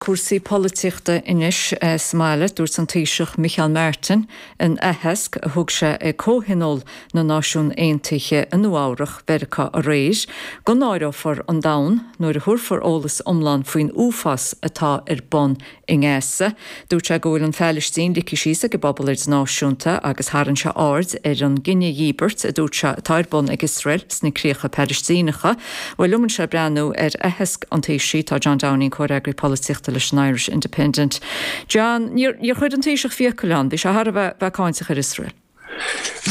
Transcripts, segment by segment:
Cúrsaí polaitíochta anois sa mbaile. Dúirt an Taoiseach Micheál Martin in aitheasc a thug sé ag Comhthionól na Náisiún Aontaithe i Nua-Eabhrac Mheiriceá aréir go náireofar an domhan nuair a thabharfar eolas iomlán faoin uafás atá ar bun i nGaza. Dúirt sé go bhfuil an Phalaistín ligthe síos ag an bpobal idirnáisiúnta agus tharraing sé aird ar an gcinedhíothú a dúirt sé atá ar bun ag Iosrael sna críocha Palaistíneacha. Bhuel, linn anseo le breathnú ar aitheasc an Taoisigh, tá John Downing, Comhfhreagraí Polaitíochta leis an Irish Independent. John, níor chuir an Taoiseach fiacail ann, bhí sé thar a bheith, bheith cáinteach ar Iosrael.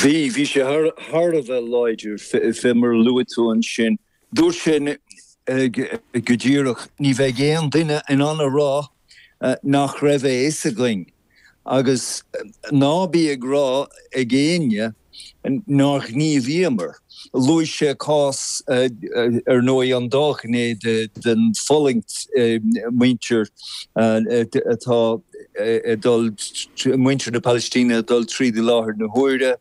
Bhí, bhí sé thar, thar a bheith láidir, fé mar a luaigh tú ansin. Dúirt sé go díreach, ní bheidh aon duine in ann a rá nach raibh a fhios againn. Agus ná bíodh sé le rá ag éinne nár ghníomhaíomar. Luaigh sé cás, ar ndóigh, an dá ghné den fulaingt, muintir atá ag dul, muintir na Palaistíne ag dul tríd i láthair na huaire,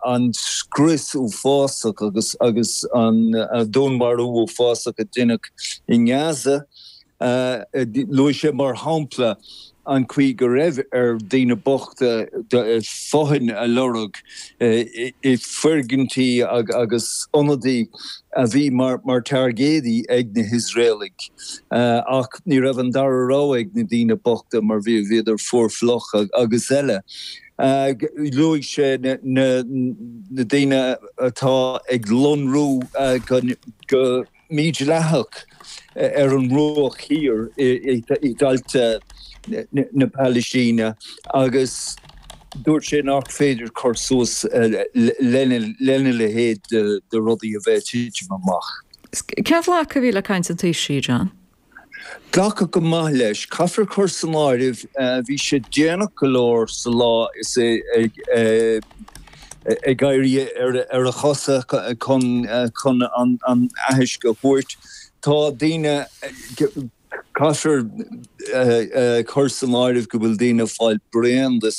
an scrios uafásach agus an dúnmharú uafásach a deineadh i nGaza. Luaigh sé, mar shampla, an chaoi go raibh ar dhaoine bochta fothain a lorg i bhfoirgintí agus ionadaí a bhí mar tairgéadaí ag na hIosraelaigh, ach ní raibh an dara rogha ag na daoine bochta mar bhí, bhíodar fuar fliuch agus eile. Luaigh sé na daoine atá ag lonnú go. mídhleathach ar an mBruach Thiar i dtailte na Palaistíne agus dúirt sé nach féidir cur suas lena leithéid de rudaí a bheith ag titim amach. Cén glacadh a bhí le caint an Taoisigh, John? Glacadh go maith leis, caithfear cur san áireamh, bhí sé déanach go leor sa lá is é ag éirí ar a chosa chun, chun an aithisc a thabhairt. Tá daoine, caithfear cur san áireamh go bhfuil daoine ag fáil bréan de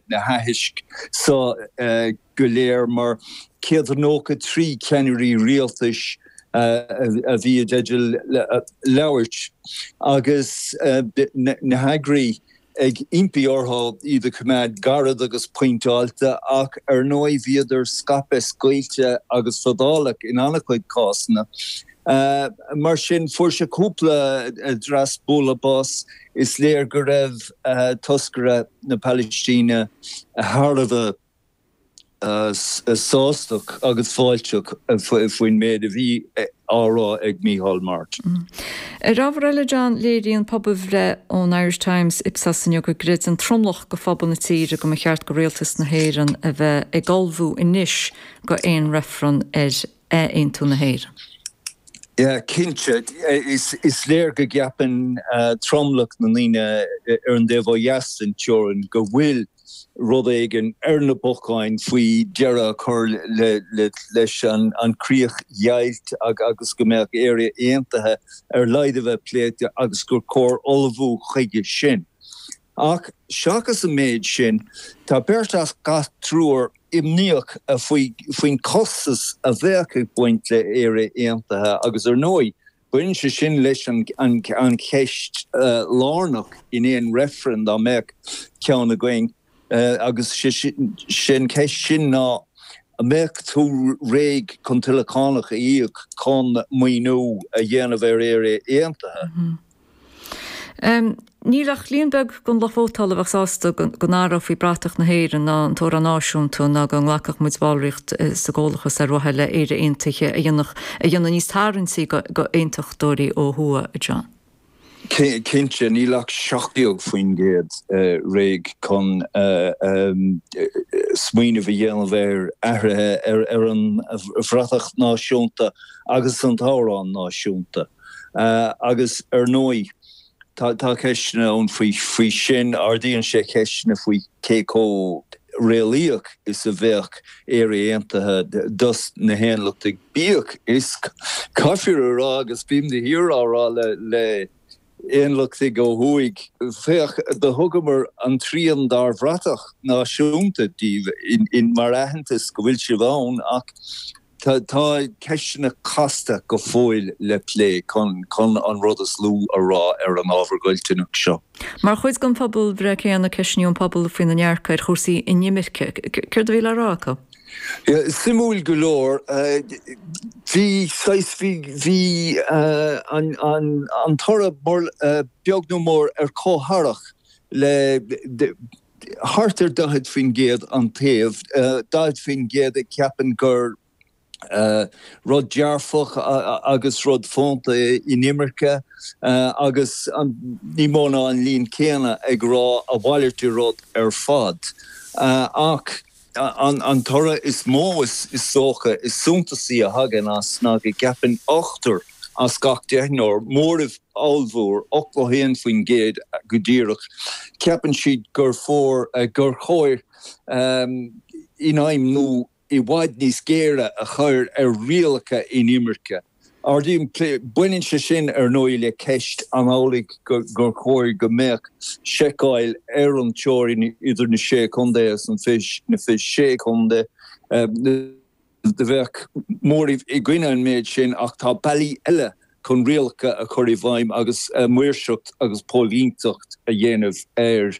na haithisc seo, go léir mar 193 ceannairí rialtais a bhí i dteideal labhairt, agus na heagraí ag impí orthu iad a choimeád gairid agus pointeáilte, ach ar ndóigh bhíodar scaipthe, scaoilte agus fadálach in an-chuid cásanna. Mar sin, fuair sé cúpla dreas bualadh bos. Is léir go raibh toscaire na Palaistíne thar a bheith. sásta agus fáilteach faoin méid a bhí á rá ag Micheál Martin. Ar ábhar eile, John, léiríonn pobalbhreith ón Irish Times Ipsos inniu go gcreideann tromlach go phobal na tíre go mba cheart go rialtas na hÉireann a bheith ag ullmhú anois go aon reifreann ar aontú na hÉireann. Cinnte, is léir go gceapann tromlach na ndaoine ar an dtaobh ó dheas den teorainn go bhfuil rud éigin ar na bacáin faoi dheireadh a chur leis an chríochdheighilt agus go mbeadh Éire aontaithe ar laghad a bheith pléite agus gur chóir ullmhú chuige sin. Ach seachas an méid sin, tá beirt as gach triúr imníoch, áfach, faoin chostas a bheadh ag baint le hÉire aontaithe agus ar ndóigh, Baineann sé sin leis an cheist lárnach in aon reifreann, dá mbeadh ceann againn, agus is é an cheist sin ná, an mbeadh tú réidh chun tuilleadh cánach a íoc chun maoiniú a dhéanamh ar Éire Aontaithe? Níl ach líon beag den lucht vótála a bheadh sásta go n-athrófaí bratach na hÉireann ná an t-amhrán náisiúnta ná dhá nglacfadh muid ballraíocht sa gComhlathas ar mhaithe le hÉire Aontaithe a dhéanamh níos tarraingtí d'aontachtóirí ó thuaidh, a John. Cinnte, níl ach 17% réidh chun smaoineamh a dhéanamh ar athruithe ar an bhratach náisiúnta agus an t-amhrán náisiúnta. Agus, ar ndóigh, tá ceisteanna ann faoi sin. Ardaíonn sé ceisteanna faoi cé chomh réalaíoch is a bheadh Éire Aontaithe dos na haontachtaigh, bíodh is, caithfear a rá, agus bím de shíor á rá le haontachtaigh ó thuaidh, féach, do thugamar an trian dár bhratach náisiúnta díbh mar aitheantas go bhfuil sibh ann, ach Tá, tá ceisteanna casta go fóill le plé chun, chun an rud is lú a rá ar an ábhar ghoilliúnach seo. Mar chuid den phobalbhreith céanna, ceistíodh an pobal faoina ndearcadh ar chúrsaí inimirce. Céard a bhí le rá acu? Suimiúil go leor. Bhí saghas, bhí an toradh beagnach mór ar chomhtharrac le thart ar 40%, an taobh, 40% a cheapann gur rud dearfach agus rud fónta é inimirce agus níos mó ná an líon céanna ag rá a mhalairt de rud ar fad. Ach. An toradh is mó, is dócha, is suntasaí a thagann as ná go gceapann ochtar as gach deichniúr, móramh ollmhór, 81% go díreach, ceapann siad gur chóir daingniú i bhfad níos géire a chur ar rialacha inimirce. Baineann sé sin, ar ndóigh, le ceist an amhlaidh gur chóir go mbeadh seiceáil ar an teorainn idir na Sé Chontae agus an Fiche-Sé Chontae. Bheadh móramh i gcoinne an méid sin ach tá bealaí eile chun rialacha a chur i bhfeidhm agus maoirseacht agus póilíneacht a dhéanamh ar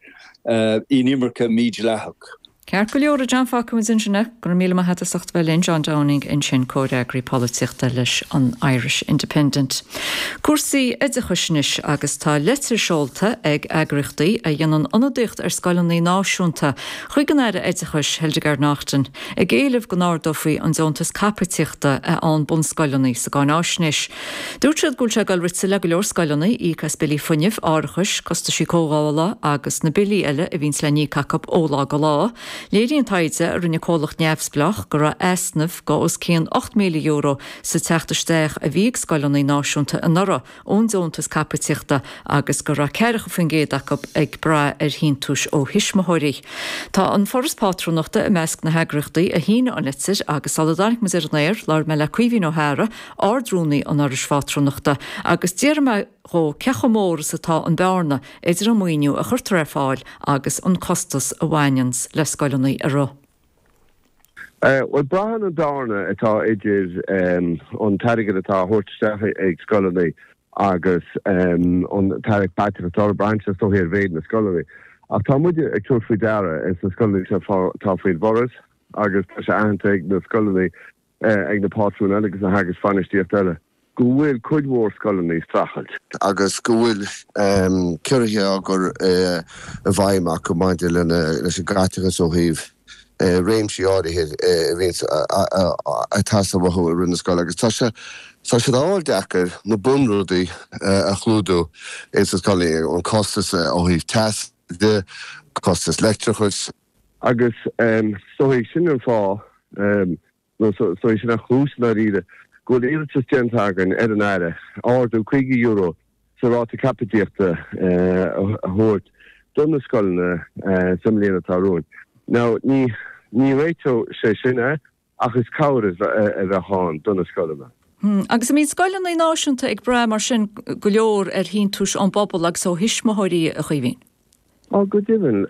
inimirce mídhleathach. Ceart go leor a John, fágfaidh muid ansin é, go raibh míle maith a't as ucht bheith linn, John Downing ansin comhfhreagraí polaitíochta leis an Irish Independent. Cúrsaí oideachais anois agus tá litir seolta ag eagraíochtaí a dhéanann ionadaíocht ar scoileanna náisiúnta chuig an Aire Oideachais, Hildegarde Naughton, ag éileamh go n-ardófaí an deontas caipitíochta a fhaigheann bunscoileanna sa gcáináisnéis. Dúirt siad go bhfuil sé ag dul rite le go leor scoileanna íoc as billí fuinnimh, árachais, costaisí cothabhála agus na billí eile a bhíonns le n-íoc acu ó lá go lá. Léiríonn taighde a rinne comhlacht neamhspleách go raibh easnamh de os cionn €8,000 sa teacht isteach a bhí ag scoileanna náisiúnta anuraidh ón deontas caipitíochta agus go raibh ceathracha faoin gcéad acu ag braith ar shíntiúis ó thuismitheoirí. Tá An Foras Pátrúnachta i measc na heagraíochtaí a shínigh an litir agus sula dtáinig muid ar an aer, labhair mé le Caoimhín Ó hEaghra Ard-Rúnaí an Fhorais Phátrúnachta, agus d'fhiafraigh mé dhó cé chomh mór is atá an bhearna idir an maoiniú a chuirtear ar fáil agus an costas a bhaineanns le scoileanna a rith. Bhuel, braitheann an bhearna atá idir an t-airgead atá á thabhairt isteach ag scoileanna agus an t-airgead atá á chaitheamh acu, braitheann sé is dóichí ar mhéid na scoileanna. Ach tá muid ag tabhairt faoi deara, is na scoileanna seo atá faoin bhForas agus tá sé aitheanta ag na scoileanna, ag na pátrúin eile agus na heagrais bhainistíochta eile go bhfuil cuid mhór scoileanna ag streachailt agus go bhfuil ciorruithe á gcur i bhfeidhm acu maidir leis an gcaiteachas ó thaobh réimsí áirithe a bhíonn an-tábhachtach i rith na scoile agus tá sé tá siad á fháil deacair na bunrudaí a chlúdú ins na scoileanna, an costas ó thaobh teasa de, costas leictreachais. Agus so é sin an fáth, nó so é sin an chúis, i ndáiríre, go bhfuil iarratas déanta againn ar an Aire ardú €50 sa ráta caipitíochta a thabhairt do na scoileanna sa mbliain atá romhainn. Now, ní réiteoidh sé sin é. Ach is cabhair a bheadh ann do na scoileanna. Agus an mbíonn scoileanna náisiúnta ag brath mar sin go leor ar shíntiúis ón bpobal agus ó thuismitheoirí, a Chaoimhín? Á, go deimhin,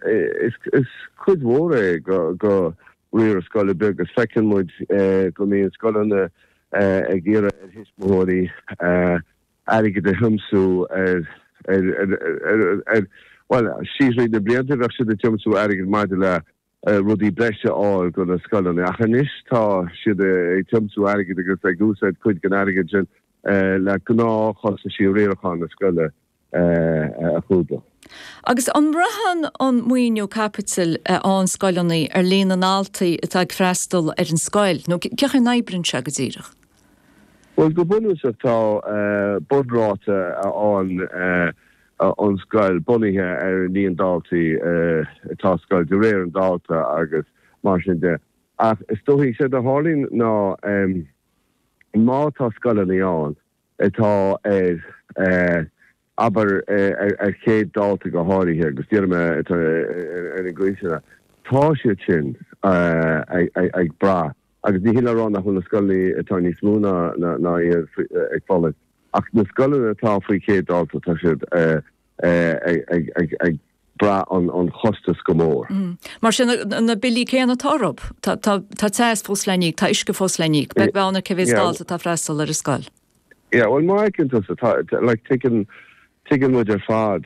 is cuid mhór é de riaradh scoile beag is feiceann muid go mbíonn scoileanna ag iarraidh ar thuismitheoirí airgead a thiomsú ar, ar, ar, ar, bhuel, síos tríd na blianta bheadh siad ag tiomsú airgid maidir le. rudaí breise a fháil do na scoileanna. Ach anois tá siad ag tiomsú airgid agus ag úsáid cuid den airgead sin le gnáthchostaisí riaracháin na scoile a chlúdach. Agus an mbraitheann an maoiniú caipitil a fhaigheann scoileanna ar líon na ndaltaí atá ag freastal ar an scoil, nó cén chaoi a n-oibríonn sé go díreach? Bhuel, go bunúsach tá bunráta a fhaigheann an scoil bunaithe ar an líon daltaí atá sa scoil de réir an dalta agus mar sin de. Ach is dóichí, séard a tharlaíonn ná má tá scoileanna ann atá ar, abair, ar 100 dalta go háirithe agus déarfaidh mé atá ar na gcúiseanna, tá siad sin ag brath agus ní hin le rá nach bhfuil na scoileanna atá níos mó ná iad ag fulaingt. Ach na scoileanna atá faoi chéad dalta, tá siad ag brath an chostais go mór. Mar sin, na billí céanna atá orthu. Tá teas fós le n-íoc, tá uisce fós le n-íoc. Beag beann ar cé mhéid dalta atá ag freastal ar an scoil. Yeah, bhuel, mar a thuigeann tusa, like, tuigeann muid ar fad.